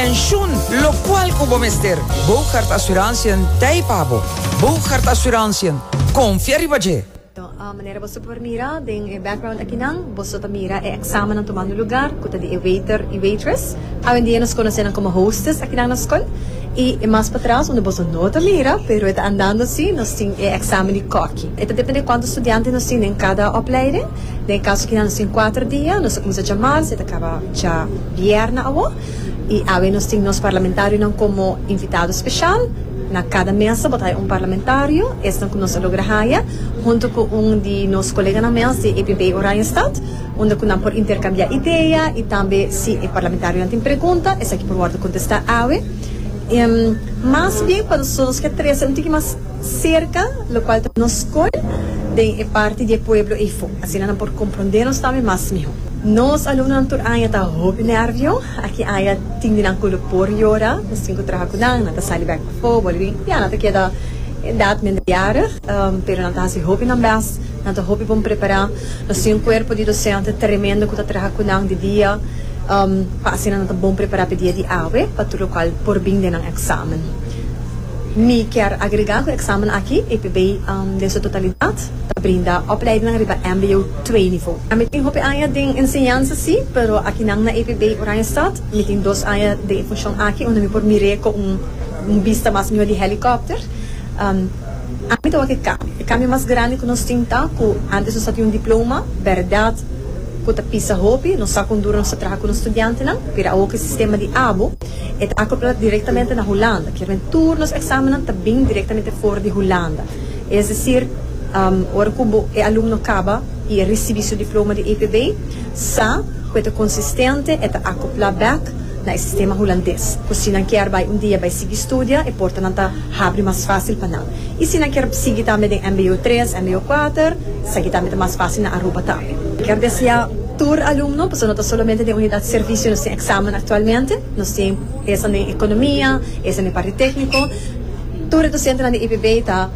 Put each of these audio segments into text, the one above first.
Pensioen, lokual ku bo mester. Bougaard Assurantiën t'ei pa bo. Bougaard Assurantiën, konfia riba dje! Manera boso por mira den e background akinan, boso ta mira e examennan tomando lugar cu ta di e waiter y waitress. Awendia nos conoce nan como hostess akinan na scol. Y e mas patras unda boso no ta mira, pero e ta andando así, nos tin e examen di cocky. E ta depende cuanto studiantes nos tin den cada opleiding. Den e caso kinan nos tin cuater dia, nos a cuminsa dja mars y e ta caba dja bierna awo. I awe nos tin nos parlamentarionan komo invitado speshal. Na kada mesa bo ta haya un parlamentario, esnan ku nos a logra haya, huntu ku un di nos koleganan mes di EPP Oranjestad, unda ku nan por interkambiá idea i tambe si e parlamentarionan tin pregunta, esaki por wòrdu kontestá awe. Mas bien pa nosotros nos ke trese un tiki mas. serka, lokual ta nos skol den e parti di e pueblo Ifo. Asina nan por komprondé nos tambe mas mihó. Nos alumnonan tur aña ta hopi nervio. Aki aña tin di nan ku lo por yora. Nos tin ku traha ku nan, nan ta sali bèk pafó, boliví. Ya nan ta keda e edat minderjarig, pero nan ta hasi hopi nan bèst. Nan ta hopi bon prepará. Nos tin un kuerpo di dosente tremendo ku ta traha ku nan di dia, pa asina nan ta bon prepará p'e dia di awe, pa tur lokual por bin den nan eksamen. Mi kier agregá ku eksamen aki, EPB den su totalidat ta brinda opleidinan riba mbo twee nivo. Mi tin hopi aña den enseñansa si, pero akinan na EPB Oranjestad mi tin dos aña den e funshon aki unda mi por mir'é ku un bista mas mihó di hèlikòpter. Ami ta wak e kambio. E kambio mas grandi ku nos tin ta ku antes nos a tin un diploma, bèrdat ku ta pisa hopi, nos sa kon duru nos ta traha ku nos studiantenan, pero awor ku e sistema di abo, E ta acoplá directamente na Hulanda, kier den tur nos examennan ta bin directamente for di Hulanda. Es decir, ora cu bo e alumno caba y e ricibi su diploma di EPB, sa cu e ta consistente, e ta acoplá bek na e sistema Hulandes, cu si nan kier bay un dia bay sigui studia, e portanan ta habri mas facil pa nan. y si nan kier sigui tambe den MBO tres, MBO kuater, esaki tambe ta mas fácil na Aruba tambe. Kier desea tur alumno, pasobra no ta solamente den unidad servicio nos tin examen actualmente, nos tin esan den economia, esan den parti técnico. Tur e docentenan di EPB ta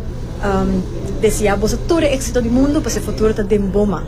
desea boso tur e éxito di mundo, pasobra e futuro ta den bo man.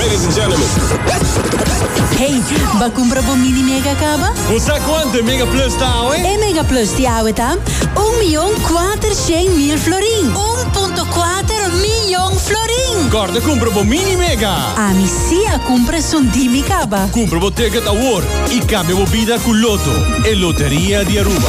Ladies and gentlemen. Hey, ba cumpra bo mini mega caba? Bo sa cuanto e Mega Plus ta awe? E Mega Plus di awe ta un miyon kuater shen mil florin. Un punto kuater miyon florin! Corda cumpra bo mini mega! Ami si a cumpra esun di mi caba. Cumpra bo ticket awor y cambia bo bida cu Lotto, e loteria di Aruba.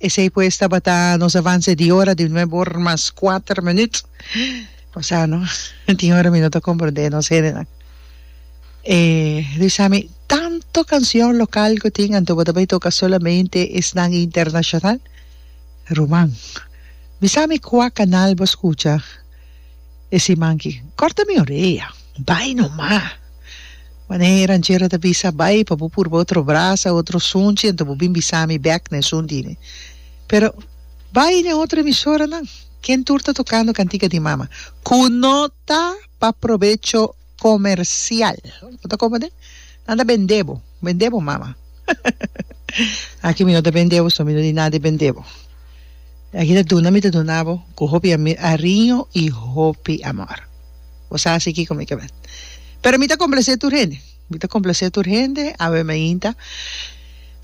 Esei pues tabata nos avance di ora di nuebe or mas kuater minuut. Pasá no tin ora mi no ta komprendé nos hendenan. E bisa mi tanto kansion lokal ku tin anto bo ta bai toka solamente esnan internashonal? Ruman, bisa mi kua kanal bo skucha e siman ki? Kòrta mi orea. Bai nomá! Wan e ranchera ta bisa, Bai pa bo purba otro brasa, otro sunchi, anto bo bin bisa mi bèk na esun di mi. Pero bai na e otro emisoranan, ken tur ta tokando kantika di mama ku no ta pa probecho komersial. Bo ta komo den? Anda bendé bo, bendé bo mama. Aki mi no ta bendé bo, so mi no di nada di bendé bo. Aki ta duna mi ta duna bo ku hopi ariño i hopi amor. Bo sa asi kiko mi ta bini. Pero mi ta complacé tur hende. Mi ta complacé tur hende awe mainta.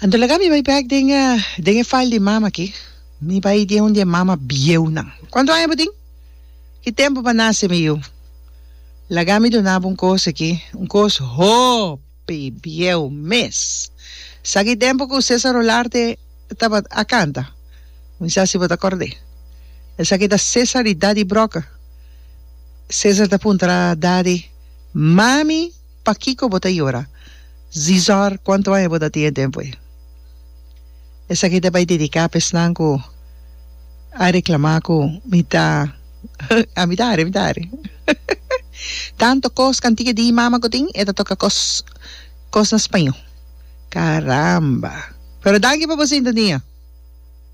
Anto laga mi bai bek den e den e file di mama aki. Mi bai den un di e mama bieunan. Cuantu aña bo tin? Ki tempo bo a nace mi yu? Laga mi duna bo un cos aki, un cos hoop. Bieu mes. Sa ki tempu ku Cesar Olarte tabat a kanta? Mi sa si bo ta kord'é. Esaki ta Cesar di Daddy Broker. Cesar ta puntra Daddy, Mami, pakiko bo ta yora? Zizor, kuantu aña bo ta tin e tempu ei? Esaki ta bai dediká pa esnan ku a reklamá ku mi ta ami ta hari, ami ta hari. Tantu kos kantiga di imama ku tin e ta toka kos kos na spañó. Karamba! Pero danki pa bo sintonia.